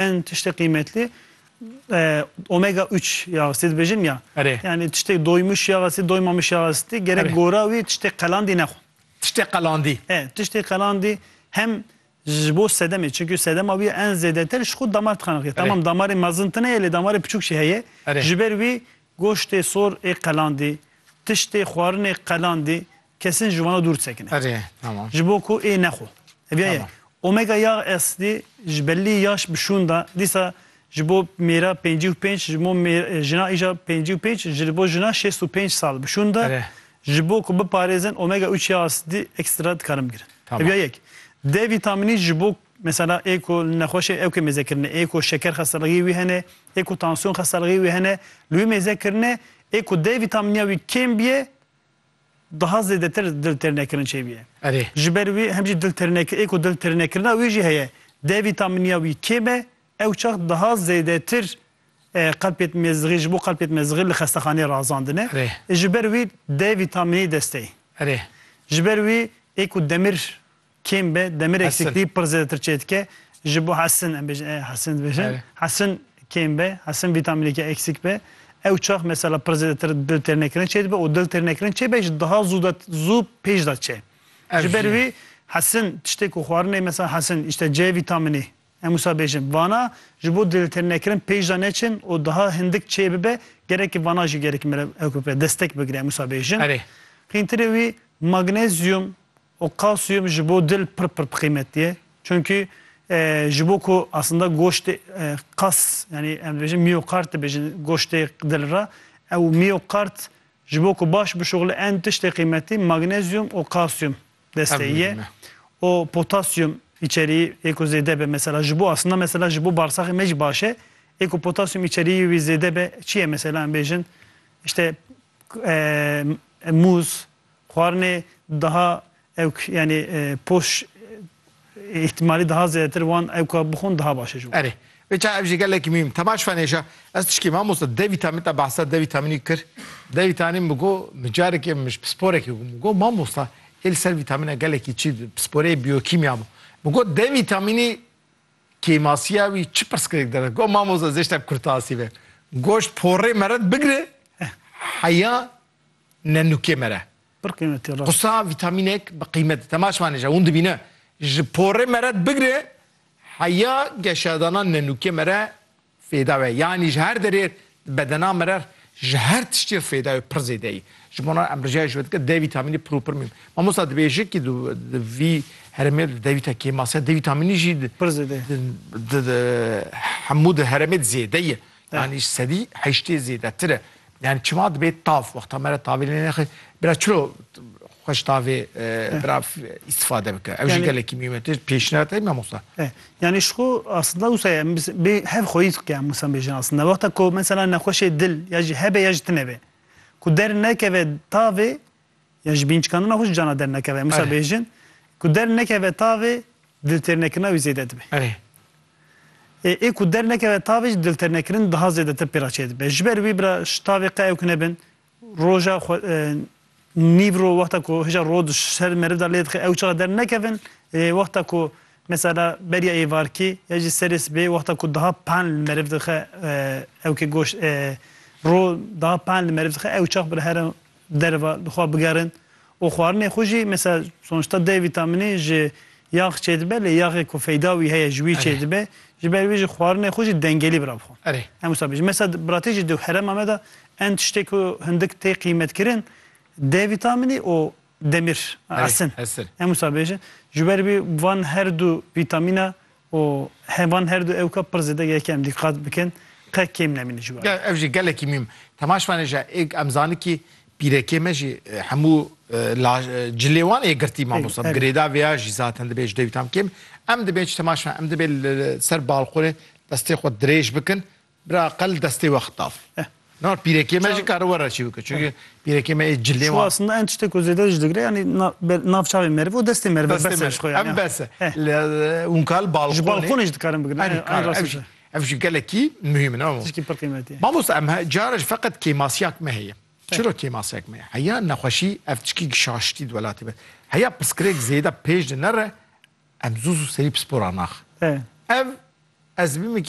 Hin tiştê qîmetlî omega üç ya sê dibêjin ya. Erê. Yanî tiştê doymuş ya sê doymamiş ya sê gerek gora wî tiştê qelandî nexwe. Tiştê qelandî. E tiştê qelandî hem ji bo sedemê çimkî sedema wî en zêdetir ji xwe damar tixanixî. Tamam damarê mezin tune ye lê damarê piçûk jî heye. Erê. Ji ber wî Goştê sor ê qelandê, tiştê xwarinê qelandê kesin ji wana dûr sekine. Erê, tamam. Ji bo ku ê nexwe. Eviya ye. Omega yağ asidê ji belî yaş bi şûn da, dîsa ji bo mêra pêncî û pênc, ji bo jina îja pêncî û pênc, ji bo jina şêst û pênc sal bi şûn da, ji bo ku biparêzin omega üç yağ asidê ekstra dikarin bigirin. Eviya yek. D vîtamînî ji bo Mesela ê ku nexweşê ewkê mêze kirine, ê ku şeker xestelixî wî hene, ê ku tansiyon xestelixî wî hene li wî mêze kirine, ê ku D vîtamîniya wî kêm bîye daha zêdetir dil têrnekirin çêbîye. Erê. Ji ber wî hem jî dil têrnekir ê ku dil têrnekirina wî jî heye. D vîtamîniya wî kêm e, ew çax daha zêdetir qelpê dimêzixî ji bo qelpê dimêzixî li xestexaneyê razandin e. Erê. Ji ber wî D vîtamînî dest tê. Erê. Ji ber wî ê ku demir. Kêm be demirek Hesin. siklî pir zêdetir çêdike ji bo hesin em bêjin ê hesin dibêjin Erê. hesin kêm be hesin vîtamîneke eksîk be ew çax mesela pir zêdetir dil têrnekirin çê dibe û dil têrnekirin çê be ji daha zû de zû pêş de çê Ev ji jî ber ye. wî hesin tiştê ku xwarinê mesela hesin îşte C vîtamînê em wisa bêjin vana ji bo dil têrnekirin pêş de neçin û daha hindik çê bibe gerekî vana jî gerekî mere ew ku bibe destek bigire em wisa bêjin Erê. qîntirê wî magnezyum O kalsiyum ji bo dil pir pir qîmetî ye. Çunkî ji bo ku aslında goştê kas yanî em dibêjin miyokard dibêjin goştê dil re ew miyokard ji bo ku baş bişuxile en tiştê qîmetî magnezyum û kalsiyum destê ye. O potasyum îçerî yê ku zêde be mesela ji bo aslında mesela ji bo barsaxê me jî baş e. Yê ku potasyum îçerîyê wî zêde be çi ye mesela em bêjin işte mûz, Xwarinê daha ewk yanî poş îhtîmalî daha zêdetir wan ewka bixwin daha baş e ji wan. Erê. Vê çaye ev jî gelekî mîm. Te baş fenêşa. Ez tişkî mamosta D vîtamîn te behsa D vîtamînî kir. D vîtanîn min got min carekê min ji pisporekî got. Min got mamosta ê li ser vîtamîna gelekî çi di pisporeyê biyokîmya bû. Min got D vîtamînî kêmasiya wî çi pirsgirêk dere? Got mamosta zêşta kurtasî be. Goşt porê meret bigire heya ne nûkê me re. Pir qîmetî rast. Qusa vîtamînek bi qîmet. Te ma şvanê je hûn dibîne. Ji porê me re bigire heya geşedana ne nûkê me re fêda we. Yanî ji her derê di bedena me re ji her tiştî re fêda wê pir zêde yî. Ji bo nan em rijaya ji we dike D vîtamînê pir û pir mîm. Mamosta dibêjikî di di vî heremê di D vîta kêmas e. D vîtamînî jî di Pir zêde ye. di di hemû di heremê di zêde ye. Yanî sedî heştê zêdetir e. Yani çima dibê tav wexta me re tavê lê nexê bira çilo xweş tavê bira îstifade bike. Ew jî gelekî mîyûm e. Tê pêşniyar te mamosta. Yani ji xwe aslında wisa ye em bê hev xweyî dike em wisa bêjin aslında. Wexta ku mesela nexweşê dil ya jî hebe ya jî tune be. Ku dernekeve tavê Ya ji bînçikandina xwe ji cana dernekeve. Em wisa bêjin ku dernekeve tavê diltêrnekirina wî zêde dibe. Ê ê ku dernekeve tavê jî diltêrnekirin daha zêdetir pê re çêdibe. Ji ber wî bira ji tavê qe ew kine bin roja xwe nîv ro wexta ku hêja rod ji ser meriv de lê dixe ew çiqa dernekevin ê wexta ku mesela beriya êvarkî ya jî serê sibê wexta ku daha pan li meriv dixe ewkê goşt ro daha pan li meriv dixe ew çax bira here derve li xwe bigerin û xwarinê xwe jî mesela sonuçta D vîtamînî ji yax çêdibe lê yaxê ku feyda wî heye ji wî çêdibe ji ber vî jî xwarinê xwe jî dengelî bira bi xwe. Em wisa bêjin. Mesela di biratî jî di herêma me de en tiştê ku hindik tê qîmetkirin D vîtamînî û demîr, esin. Em wisa bêjin. Ji ber vî van her du vîtamîna û hevan her du ewka pir zêde ye ke em dîqat bikin qe kêm nemîne ji warê. Ev jî gelekî mîm. Temaş vane je êk em zani kî pîrekê me jî hemû la cilê wan ê girtî mamosta bi girêda vêya jî zaten dibê ji dêwî tam kêm. Em dibê ji temaş vane em dibê li ser balqonê destê xwe dirêj bikin Bira qel destê we xitaf. Na pîrekê me jî kare were çî bike. Çunke pîrekê me ê cilê wan. Çû aslında en tiştê ku zêde ji digre yanî nav çavê meriv û destê meriv e bes e ji xwe yanî. Ev bes e. Hûn kal balqonê. Ji balqonê jî dikarin bigrin. Erî kar ev jî. Ev jî gelekî muhîm in. Tiştî pir qîmetî ye. Mamosta em cara jî feqet kêmasîyak me heye. Çira kêmasîyak me heye? Heya nexweşî ev tiştî ku şaştî di welatê me. Heya pirsgirêk zêde pêş de nere em zû zû serî pispor a naxin. Ev ez bimikî